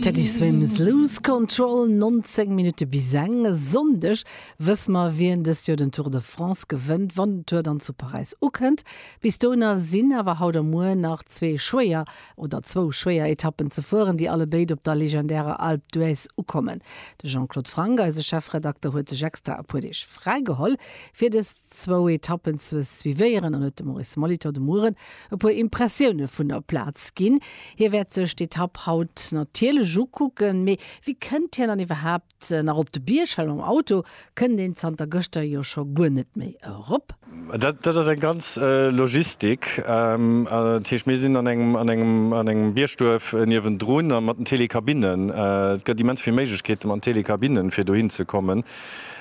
Teddy Swims Lose Control, 19 Minutte bis eng. E Sonndeg wësse mer, wien dëst Joer den Tour de France gewënnt, wann den Tour dann zu Paräis ukënnt. Bis dohinner sinn awer haut a muer nach zwee schwéier oder zwou schwéier Etappen ze fueren, déi allebéid op der legendärer Alpe d'Huez ukommen. De Jean-Claude Franck, eise Chefredakter, huet sech extra e puer Deeg fräi geholl, fir dës. zwou Etappen ze suivéieren an huet dem Maurice Molitor de Mueren e puer Impressioune vun der Plaz ginn. Hie wäert sech d'Etapp haut natierlech ukucken. Mee wéi kënnt hien dann iwwerhaapt nach op de Bierg? Well mam Auto kënnt een zanter gëschter jo scho guer net méi erop. Dat ass eng ganz Logistik. Dat heescht, mir sinn an engem Biergduerf niewendrun a mat den Télécabinen. Et gëtt immens vill Méiglechkeete mat den Télécabinen, fir dohin ze kommen.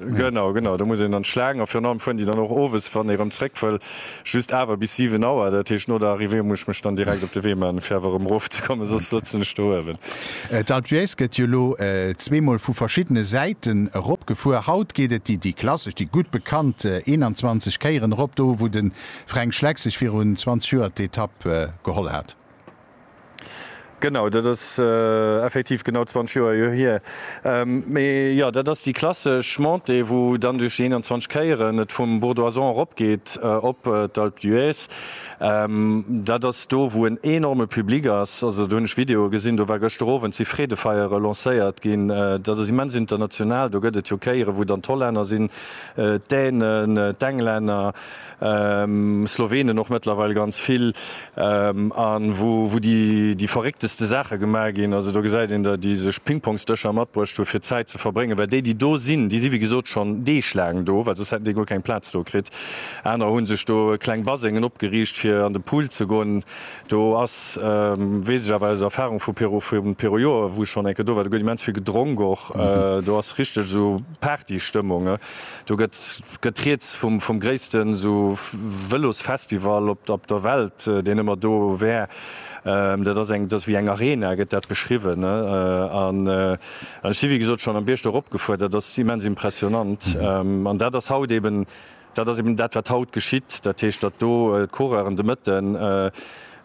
Genau, genau, do muss een an d'Schlaang a virun allem fueren déi dann och owes, wann ee erëm zréck wëll, just awer bis 7 Auer. Dat heescht, no der Arrivée muss ech mech dann direkt op de Wee maachen, fir awer erëm erofzekommen, soss sëtzen ech do uewen. D'Alpe d'Huez gëtt jo elo zweemol vu verschiddene Säiten eropgefuer. Haut geet et déi klassesch, déi gutt bekannt 21 Kéieren erop, do wou de Fränk Schleck sech virun 20 Joer d'Etapp geholl hat. Genau, dat ass effektiv genau 20 Joer jo hier. Mee jo, dat ass déi klassesch Montée, wou dann duerch déi 21 Kéieren et vum Bourdoisois eropgeet op d'Alpe d'Huez. Dat ass do, wou en enorme Public ass. Also do hunn ech Videoe gesinn, do war gëschter Owend si Freedefeiere lancéiert ginn. Dat ass immens international. Do gëtt et jo Kéiere wou dann d'Hollänner sinn, d'Dänen, d'Englänner, Slowenen och mëttlerweil ganz vill an wou déi verréckteste Saache gemaach ginn. Also do gesäit een, datt déi sech Pingpongsdëscher matbruecht hu fir Zäit ze verbréngen, well déi déi do sinn, déi si wéi gesot schonn deeglaang do, well soss hätten déi guer keng Plaz do kritt. Anerer hu sech do kleng Basengen opgeriicht fir an de Pool ze goen. Do ass, weess ech awer aus Erfarung vu vum Perujoer wou ech schonn eng Kéier do war, do gëtt immens vill gedronk och. Do ass richteg esou Partystëmmung. Do gëtt gëtt rieds vum gréisste sou Vëlosfestival op der Welt, deen ëmmer do wär. Dat ass eng, dat ass wéi eng Arena, gëtt dat beschriwwen. An ech si wéi gesot schonn am Bierg do eropgefuer, dat ass immens impressionant. An dat ass haut eeben, dat ass eeben dat wat haut geschitt, dat heescht, datt do d'Coureuren de Mëtten,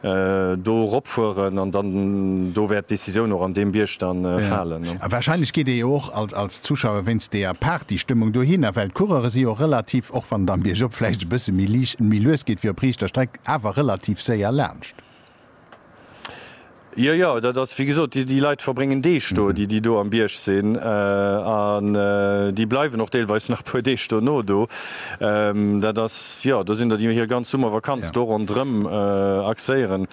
do eropfueren an dann do wäert d'Décisioun och an deem Bierg da falen. A wahrscheinlech geet ee jo och als Zuschauer wéinst deeër Partystëmmung dohinner, well d'Coureure si jo relativ, och wann et am Biergop vläicht e bësse méi liicht, méi lues geet wéi op riichter Streck, awer relativ séier laanscht. Jo, jo, dat ass wéi gesot, déi Leit verbréngen Deeg do, déi déi do am Bierg sinn, an déi bleiwen och deelweis nach e puer Deeg dono do. Dat ass, jo, do sinn der, déi hir ganz Summervakanz do ronderëm axéieren.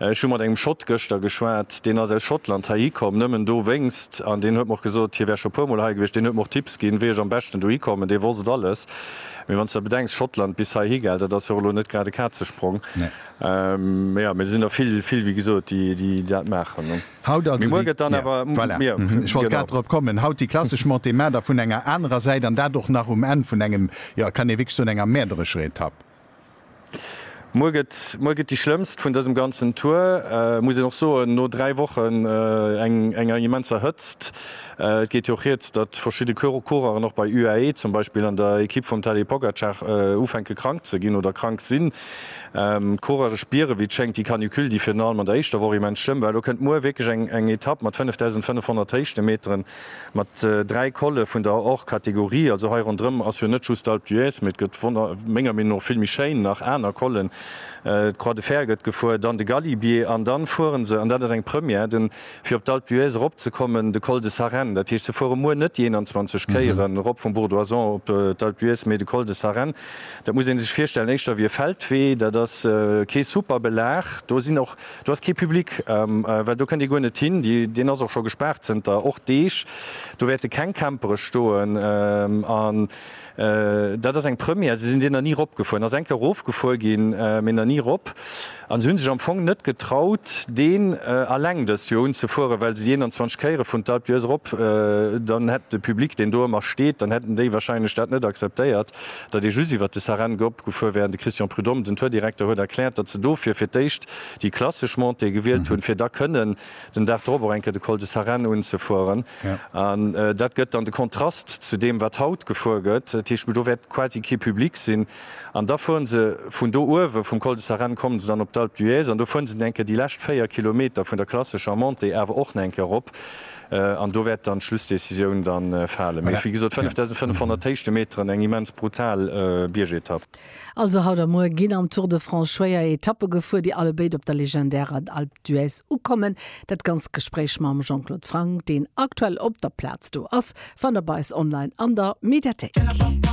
Ech hu mat engem Schott gëschter geschwat, deen ass aus Schottland heihi komm, nëmmen dowéinst. An deen huet mer och gesot, hie wär scho e puer Mol hei gewiescht. Deen huet mer och Tipps ginn, wéi ech am beschten dohi kommen. Dee wosst et alles. Mee wann s de da bedenks, Schottland bis heihi, gell, dat ass jo och elo net grad e Kazesprong. Mä jo, mir sinn der vill, vill, wéi gesot, déi dat maachen. Haut also déi, voilà, ech wollt grad drop kommen, haut déi klassesch Montée, mä da vun enger anerer Säit, an dat och nach um Enn vun engem, jo, et kann ee wierklech soen, enger mäerderescher Etapp. Muer gëtt, muer gëtt déi schlëmmst vun dësem ganzen Tour, muss een och soen, no dräi Wochen enger immenser Hëtzt. Et geet jo och rieds, datt verschidde Coureuren och bei UAE zum Beispill an der Ekipp vum Tadej Pogacar ufänke krank ze ginn oder krank sinn. D'Coureuren spieren, wéi et schéngt, déi Canicule, déi virun allem an der éischter Woch immens schlëmm war. Elo kënnt muer wierklech eng Etapp mat 5.500 Héichtemeteren, mat dräi Colle vun der Hors-Catégorie. Also hei ronderëm ass jo net just d'Alpe d'Huez, mee et gëtt menger Meenung no vill méi schéin nach aner Collen. D'Croix de Fer gëtt gefuer, dann de Galibier an dann fuere se, an dat ass eng Première, den. Fir op d'Alpe d'Huez erop ze kommen, de Col de Sarenne, dat heescht se fuere muer net déi 21 Kéieren erop vum Bourdoisan op d'Alpe d'Huez, mee de Col de Sarenne, dat muss ee sech virstellen éischter wéi e Feldwee, dat ass kee super Belag, do sinn och, do ass kee Public, well do kënnt ee guer net hin, deen ass och scho gespaart zënter och Deeg, do wäerte keng Campere stoen an. Dat ass eng Première, se sinn déi nach ni ropgefueren. Ass eng Kéier erofgefuer ginn, mee nach ni rop. An se hunn sech am Fong net getraut, deen alleng dëst Joer unzefueren, well se déi 21 Kéiere vun d'Alpe d'Huez erop, dann hätt de Public, deen do ëmmer steet, dann hätten déi wahrscheinlech dat net akzeptéiert, datt ee just iwwert de Sarenne ropgefuer wär. An de Christian Prud'homme, den Tourdirekter, huet erkläert, datt se dofir fir d'éischt déi klassesch Montée gewielt hunn, fir da kënnen den Dag drop och eng Kéier de Col de Sarenne unzefueren. An dat gëtt dann de Kontrast zu deem, wat haut gefuer gëtt. Dat heescht, do wäert quasi kee Public sinn. An da fueren se vun do uewe vum Col de Sarenne, kommen se dann op d'Alpe d'Huez an do fueren se nach eng Kéier déi lescht 4 Kilometer vun der klassescher Montée awer och nach eng Kéier erop. An do wäert dann d'Schlussdecisioun da falen. Mee wéi gesot, 5.500 Héichtemeteren, eng immens brutal Biergetapp. Also haut a muer ginn am Tour de France schwéier Etappe gefuer, déi allebéid op der legendärer Alpe d'Huez ukommen. Dat ganzt Gespréich mam Jean-Claude Franck, deen aktuell op der Plaz do ass, fannt der bei eis online an der Mediathéik.